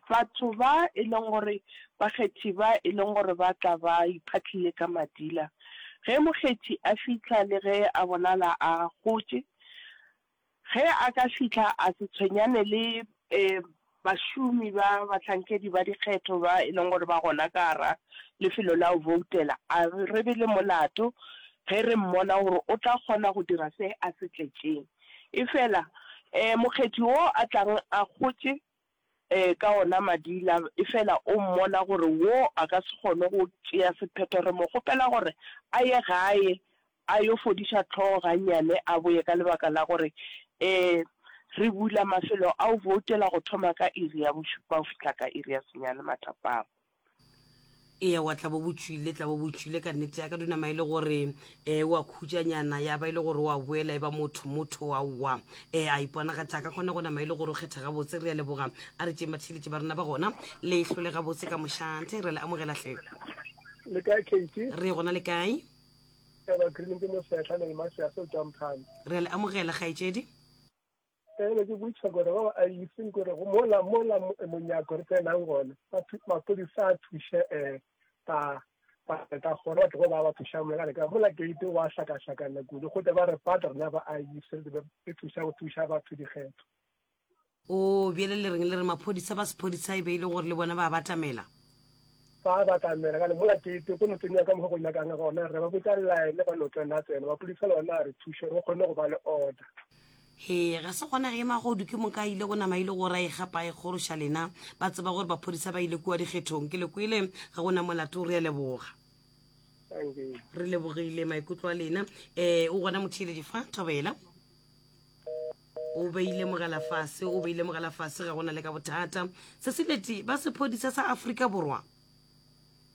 batho ba e leng gore ba kgethi ba e leng gore ba tla ba iphatlile ka madila ge mokgethi a fihla le ge a bonala a gotše ge a ka fihla a se tshwenyane le eh bašomi ba bahlankedi ba dikgetho ba e leng gore ba gona ka gora lefelo la go voutela a re be le molato ge re mmona gore o tla kgona go dira se a se tletšeng. Efela, ee, Mokgethi wo a tlago a kgotše ka ona madi la, efela o mmona gore wo a ka se kgone go tšea sephetho, re mo kgopela gore a ye gae a yo fodiša hlogo gannyane a boye ka lebaka la gore, ee, re bula mafelo a go voutela go thoma ka iri ya bošupa go fihla ka iri ya senyane matapama. ewa tla bo bo tšwile tla bo bo tšwile ka nnete ya ka dinama e le gore um eh, wa khutšanyana ya ba e le gore wa boela e ba motho motho wa wa um eh, a iponagatša ka kgona go nama e le gore o kgetha gabotse re ya leboga a re tšeng batheletše ba rena ba gona le hlole gabotse ka mošate re le amogelahle le kae kate re gona le kae eba green ke mosetlha le lemasease o tswang phane re le amogela kgaetšedi Ke be ke botša gore go a iseng gore go mola mola monyako re tsenang gona mapodisa a thuše um ba ka gore batho go ba ba thušang molekane ka mola gate wa hlakahlakana kudu gote ba re pata rena ba a ise e thuša go thuša batho dikgetho o bjele le reng le re maphodisa ba sephodisa e be e le gore le bona ba batamela ba batamela ka mola gate go no tsenya ka mogo go nyakang gona re ba botsa line ba no tsena tsena mapodisa le ona a re thuše go kgone go ba le order Hee, ga se gona ge Magodu ke moka a ile go nama ile go ra e gapa e kgoroša lena ba tseba gore baphodisa ba ile kua dikgethong ke le kwele ga go na molato re a leboga re lebogile maikutlo a lena um o gona motheeletši fa thobela o beile mogala fase o beile mogala fase ga gona le ka bothata se se leti ba sephodisa sa afrika borwa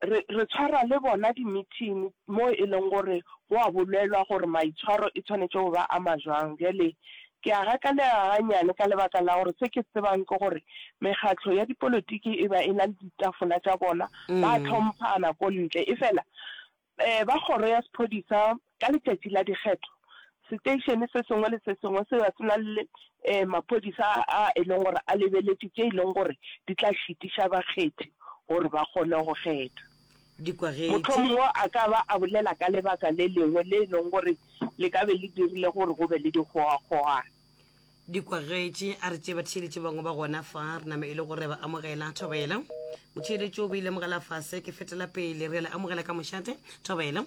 Re, re tshwara le bona dimithini moo e leng gore go a bolelwa gore maitshwaro e tshwanetše go ba a ma jwang. Bjale, ke a gakanega gannyane ka lebaka la gore se ke tsebang ke gore mekgatlo ya dipolotiki e ba e na le ditafola tša bona, ba a tlhomphana ko ntle. Efela, um ba kgoro ya sephodisa Ka letšatši la dikgetho, seteišene se sengwe le se sengwe se be se na le maphodisa a e leng gore a lebeletše tše e leng gore di tla šitiša bakgethi gore ba kgone go kgetha. Mohlomongwe Dikwagetše. a ka ba a bolela ka lebaka le lengwe le e leng gore le ka be le dirile gore go be le dikgogakgogano. Dikwagetše, A re tšee batheeletši bangwe ba gona fa re nama e le gore re a ba amogela. Thobela. Motheeletši o be ilemogela fase, Ke fetela pele. Re a le amogela ka mošate. Thobela.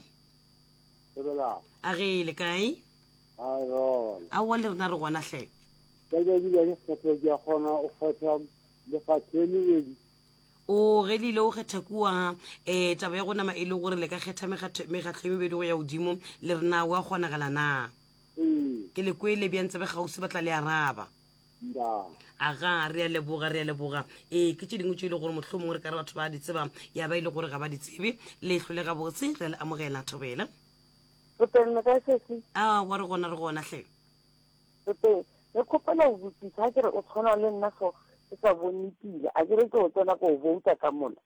Lebelang. A ge le kae? A rona. A wa le rena re gona hle. Ka ja di bane kgetho ke a kgona o kgetha le fa tsheni le di. O ge le ile o kgetha kua eh taba ya go nama e le gore le ka kgetha megatho megatho e mebedi go ya godimo le rena wa kgonagala na? Ke le kwele bjang tsebe kgauswi ba tla le araba. aga re a leboga re a leboga ee ke tše dingwe tše e le gore mohlho mongwe re ka re batho ba di tseba ya ba e le gore ga ba di tsebe le tlhole ga botse re a le amogela thobela a wa re gona re gona hle re kgopela go botsisa ke re o tshwana le nna so ke sa bone pila a ke re ke o tsena ko o bouta ka mola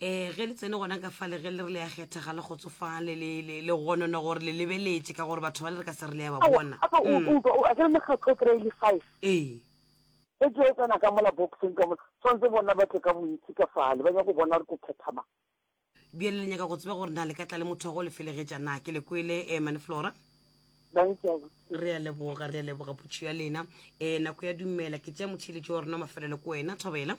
Ee, ge le tsene gona ka fale, ge le re le ya kgethega, le kgotsofang, le, le, le, le gonona gore le lebeletše, ka gore batho bale re ka se re le ya ba Aowa, bona. gape o, Mm. o utlwa, o, akere mekgatlo o kry-a e le five. Ee. Ge ke yo tsena ka mola boxeng ka mola, tshwanetse bona ba tle ka bontši ka fale, ba nyaka go bona gore ke kgetha mang. Bjale le nyaka go tseba gore na le ka tla le motho wa go le felegetša na? Ke le kwele, eh, Mane Flora. Bang ke a go tseba. Re a leboga, re a leboga putšo ya lena. Eh, nako ya dumela, ke tšea motheeletši wa rona wa mafelelo ko wena, Thobela.